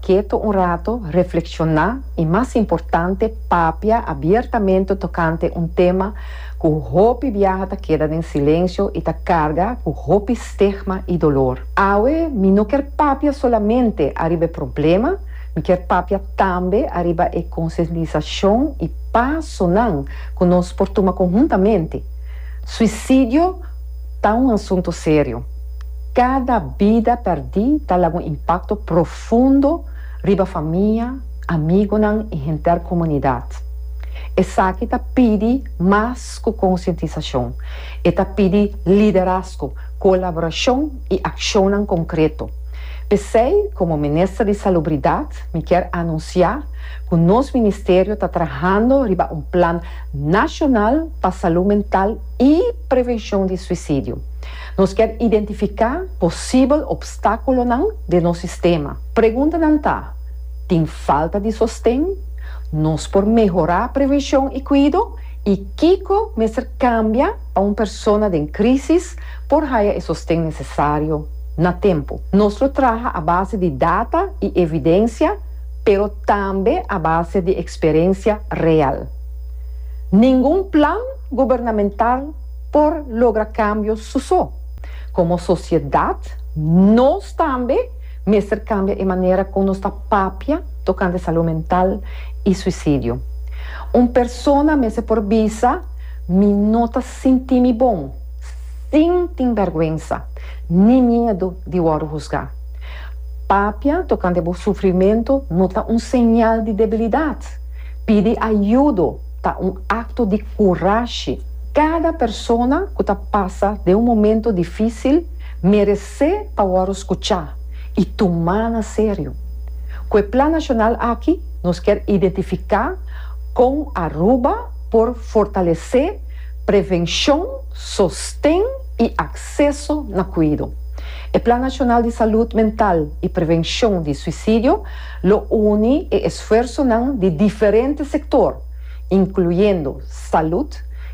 Keto un rato, reflekshoná i mas importante papia abiertamente tokante un tema ku hopi biaha ta keda den silensio i ta karga ku hopi stigma i dolor. Awe mi no kier papia solamente ariba e problema, mi kier papia tambe ariba e konsientisashon i pasonan ku nos por tuma konhuntamente. Suisidio ta un asuntu serio. Kada bida pèrdí ta laga un impakto profundo riba famia, amigunan i henter komunidat. Esaki ta pidi mas ku konsientisashon, e ta pidi liderazgo, kolaborashon i akshonnan konkreto. P'esei, komo Minister di Salubridat, mi kier anunsiá ku nos ministerio ta trahando riba un plan nashonal pa salú mental i. Prevenshon di suisidio. Nos kier identifiká posibel opstákulonan den nos sistema. Preguntanan ta, Tin falta di sosten? Nos por mehorá prevenshon i kuido? I kiko mester kambia pa un persona den krísis por haya e sosten nesesario na tempu? Nos lo traha a base di data i evidensia, pero tambe a base di eksperensia real. Ningun plan. gubernamental por logra kambio su so. Komo sosiedat nos tambe mester kambia e manera kon nos ta papia tokante salu mental i suisidio. Un persona mester por bisa, Mi no ta sinti mi bon, sin tin bèrgwensa ni miedu di wòrdu husgá. Papia tokante bo sufrimentu no ta un señal di debilidat. Pidi ayudo. Ta un akto di kurashi. Kada persona ku ta pasa den un momentu difísil meresé pa wòru skuchá i tumá na serio. Ku e Plan Nashonal aki nos kier identifiká kon Aruba por fortalesé prevenshon, sosten i akseso na kuido. E Plan Nashonal di Salud Mental i Prevenshon di Suisidio lo uni e. Sfuersonan di diferente sektor, inkluyendo salud,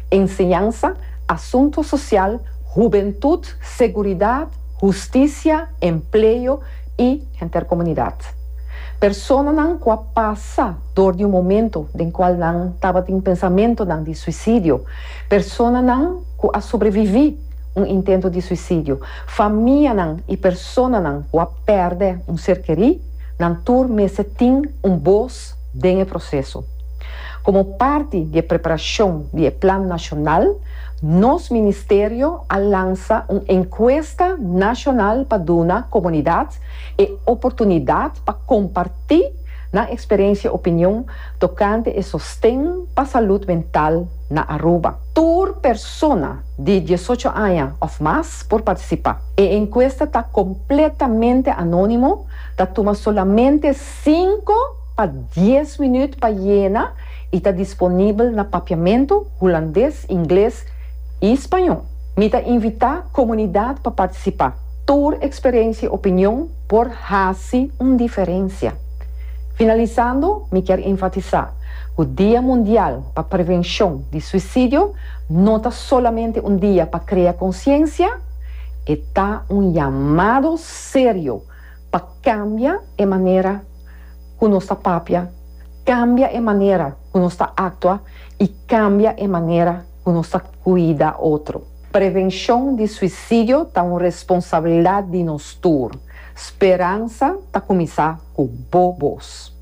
enseñansa, asuntu sosial, hubentut, seguridat, hustisia, empleo i henter komunidat. Personanan ku a pasa dor di un momento den kual nan tabatin pensamentonan di suisidio, personanan ku a sobreviví un intento di suisidio, famianan i. Personanan cu a perde un ser kerí, nan tur mester tin un bos den e proceso. Como parti di e preparacion di e Plan Nacional, nos Ministerio a lansa un encuesta nacional pa duna comunidad e oportunidad pa comparti nan experiencia y opinion tocante e sosten pa salud mental na Aruba. Tur persona di diesocho aña of mas por partisipá. E enkuesta ta kompletamente anónimo, ta tuma solamente sinku pa dies minüt pa yena i ta disponibel na Papiamentu, Hulandes, Ingles i Spañó. Mi ta invitá komunidat pa partisipá. Tur eksperensia i opinion por hasi un diferensia. Finalisando, mi kier enfatisá ku Dia Mundial pa Prevenshon di Suisidio no ta. solamente un dia pa krea konsyensia, e ta un yamado serio pa kambia e manera ku nos ta papia, kambia e manera ku nos ta aktua i kambia e manera ku nos ta kuida otro. Prevenshon di suisidio ta un responsabilidat di nos tur. Speransa ta kuminsá ku bo bos.